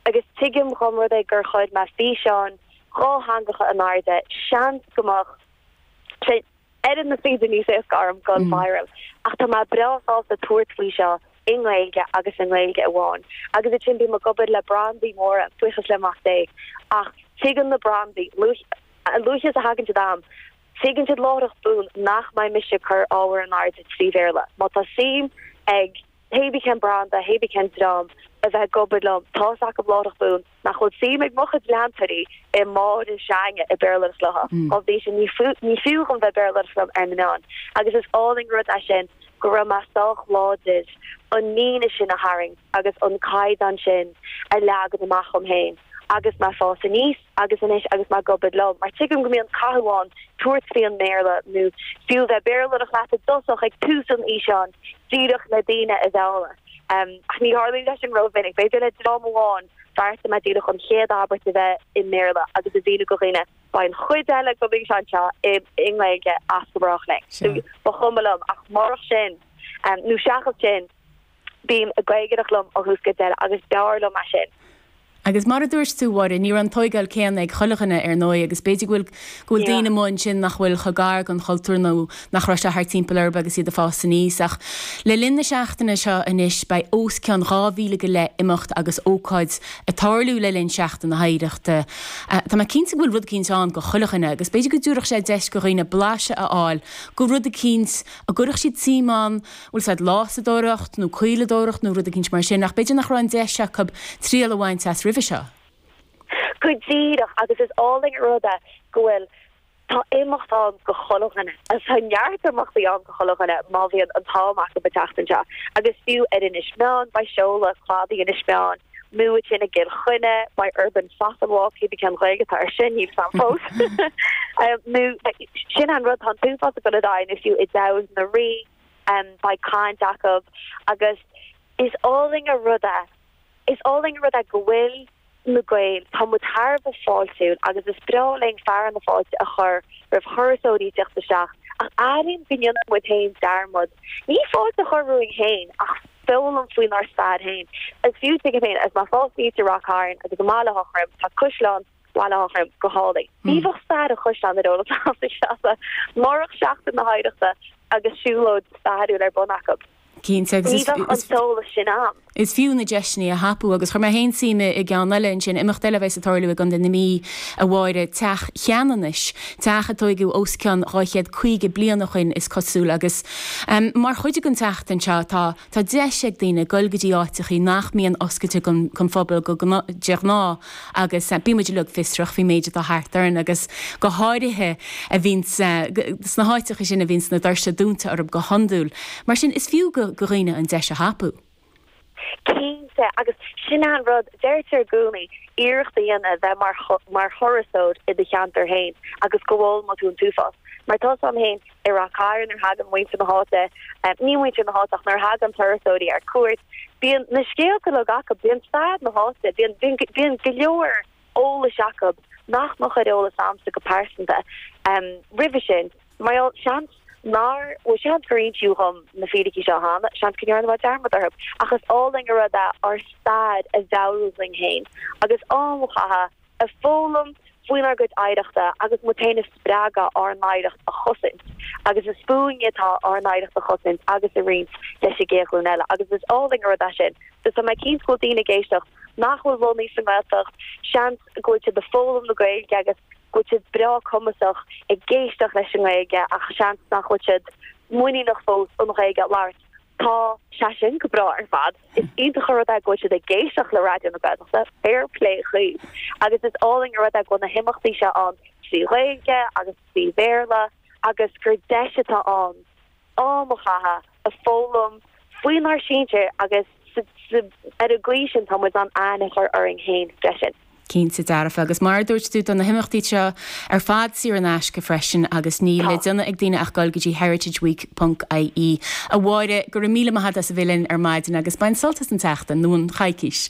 Agus tuigim dhá mba rud é gur chuir mé físeáin dhátheangacha in airde, seans go mbeadh sé ar an taobh níos éasca orm gone viral, ach tá mé breá sásta tabhairt faoi seo i nGaeilge agus i nGaeilge amháin. Agus ansin bím ag obair le brandaí móra, buíochas le Mac Dé, ach tuigeann na brandaí, a luaithe is a thagann siad a'm, tuigeann siad láithreach bonn nach mbeidh mise ag cur ábhair in airde trí Bhéarla. Má tá suim ag. Pébí cén branda, pébí cén dream a bheith ag obair liom, tá's acab láithreach bonn nach bhfuil suim ag mo chuid leantóirí i Máire na Gréine ag Béarlóireacht léithi. Dá bhrí sin ní fiú ní fiú dhom bheith ag Béarlóireacht liom ar na meáin. Agus is álainn an rud é sin go raibh mé sách láidir an líne sin a tharraingt agus an caighdeán sin a leagan amach dhom fhéin agus mé ag fás aníos. agus anois agus mé ag obair liom, mar tuigim go mbíonn cathú ann tabhairt faoi an mBéarla nó fiú a bheith ag Béarlóireacht leat i dtosach ag tús an fhíseáin, díreach le daoine a mhealladh. Ach ní tharlaíonn sé sin ró-mhinic. B'fhéidir le dream amháin bheartaigh mé díreach an chéad abairt a bheith i mBéarla agus a mhíniú go dhaoine beidh an chuid eile den fhíseán seo i nGaeilge as go brách linn. Sea. Ba chuma liom. Ach murach sin, nó seachas sin, bím ag Gaeilgeoireacht liom ó thús go deireadh agus b'fhearr liom é sin. Agus mar a dúirt tú, a Mháire, ní raibh an tóigeáil céanna ag chuile dhuine ar ndóigh agus b'fhéidir go bhfuil, go bhfuil daoine amuigh ansin nach bhfuil chomh gar don chultúr nó nach raibh sé thart timpeall orthu agus iad ag fás aníos. Ach le linn na seachtaine seo anois beidh os cionn dhá mhíle go leith imeacht agus ócáid ag tarlú le linn Sheachtain na hOidhreachta. Tá mé cinnte go bhfuil rud eicínt ann do chuile dhuine agus b'fhéidir go dtabharfadh sé deis go dhaoine blaiseadh a fháil de rud eicínt a gcuirfeadh siad suim ann bhfuil's a'd lásadóireacht nó caoladóireacht nó rud eicínt mar sin ach b'fhéidir nach raibh an deis acu triail a bhaint as roimhe seo. Go díreach agus is álainn an rud é go bhfuil, tá imeacht ann go chuile dhuine agus tá neart imeachtaí ann go chuile dhuine má bhíonn an t-am acu an tseachtain seo agus fiú ar Inis Meáin beidh seoladh cladaigh Inis Meáin, Muid i gCill Chainnigh, beidh urban fossil walk, pébí cén Ghaeilge atá air sin, níl's a'm fós. Nó sin an rud tá tú fós ag dul i d'aghaidh nó fiú i dTeamhair na Rí, beidh caint acu agus is álainn an rud é, is álainn an rud é go bhfuil na Gaeil, tá muid thar a bheith fáiltiúil agus is breá linn fearadh na fáilte a chur roimh thurasóirí isteach ach airím go ndéanann muid féin dearmad ní fáilte a chur romhainn féin ach foghlaim faoinár stair féin. Is fiú tuigim féin agus má fáiltítear Ráth Cairn agus i mBaile Átha Throim tá Caisleán Bhaile Átha Throim go hálainn. Ní bheadh stair an chaisleáin ar eolas agam sa Seanad murach Seachtain na hOidhreachta agus siúlóid stairiúil ar bun acu. Cinnte agus is Ní bheadh an t-eolas sin agam. is fiú na deiseanna a thapú agus chuir mé féin suim i gceann eile ansin, imeacht eile a bheas ag tarlú i gContae na Mí a Mháire, Teach Cheanannais. teach a tóigeadh os cionn dhá chéad caoga bliain o shoin is cosúil agus mar chuid den tseachtain seo tá tá deis ag daoine goil go dtí áiteachaí nach mbíonn oscailte don phobal go de ghnáth agus bíonn muid uilig fiosrach faoin méid atá thart orainn agus go háirithe a bhíonns sna háiteachaí sin a bhíonns na doirse dúnta orthu go hiondúil. Mar sin is fiú do dhaoine an deis a thapú. Cinnte, agus sin é an rud, deirtear i gcónaí, iarracht a dhéanamh bheith mar, mar thurasóir i do cheantar fhéin agus go bhfoghlaimeoidh tú an t-uafás. Mar tá a fhios 'am fhéin i Rath Cairn, nuair thagann muintir na háite, ní muintir na háite ach nuair thagann turasóirí ar cuairt, bíonn na scéalta uilig acu, bíonn stair na háite, bíonn, bíonn, bíonn go leor, eolais acu nach mbeadh ar eolas agamsa go pearsanta roimhe sin. Mar gheall, seans, nár, bhuel, seans gur insíodh dhom na fíricí seo cheana, seans go ndearna mé dearmad orthu, ach is álainn an rud é ár stair a mheabhrú dhuinn féin agus am a chaitheamh ag foghlaim faoinár gcuid oidhreachta agus muid féin a spreagadh ár n-oidhreacht a chosaint agus is fúinne atá ár n-oidhreacht a chosaint agus a roinnt leis an gcéad ghlúin eile agus is álainn an rud é sin. Tá mé cinnte go bhfuil daoine ag éisteacht nach bhfuil lonnaithe sa nGaeltacht, seans go bhfuil siad ag foghlaim na Gaeilge agus go bhfuil siad breá cumasach ag éisteacht leis an nGaeilge ach seans nach bhfuil siad muiníneach fós an Ghaeilge a labhairt. Tá sé sin go breá ar fad, is iontach an rud é go bhfuil siad ag éisteacht le Raidió na Gaeltachta, fair plé dhaoibh, agus is álainn an rud é go bhfuil na himeachtaí seo ann trí Ghaeilge agus trí Bhéarla agus gur deis atá ann am a chaitheamh ag foghlaim faoinár sinsir agus ar an gcaoi sin tá muid in ann aithne a chur orainn féin freisin. Cinnte dearfa. Agus mar a dúirt tú tá na himeachtaí seo ar fad saor in aisce freisin agus níl le déanamh ag daoine ach goil go dtí heritageweek ponc IE. A Mháire, go raibh míle maith agat as a bheith linn ar maidin agus bain sult as an tseachtain, nó an choicís.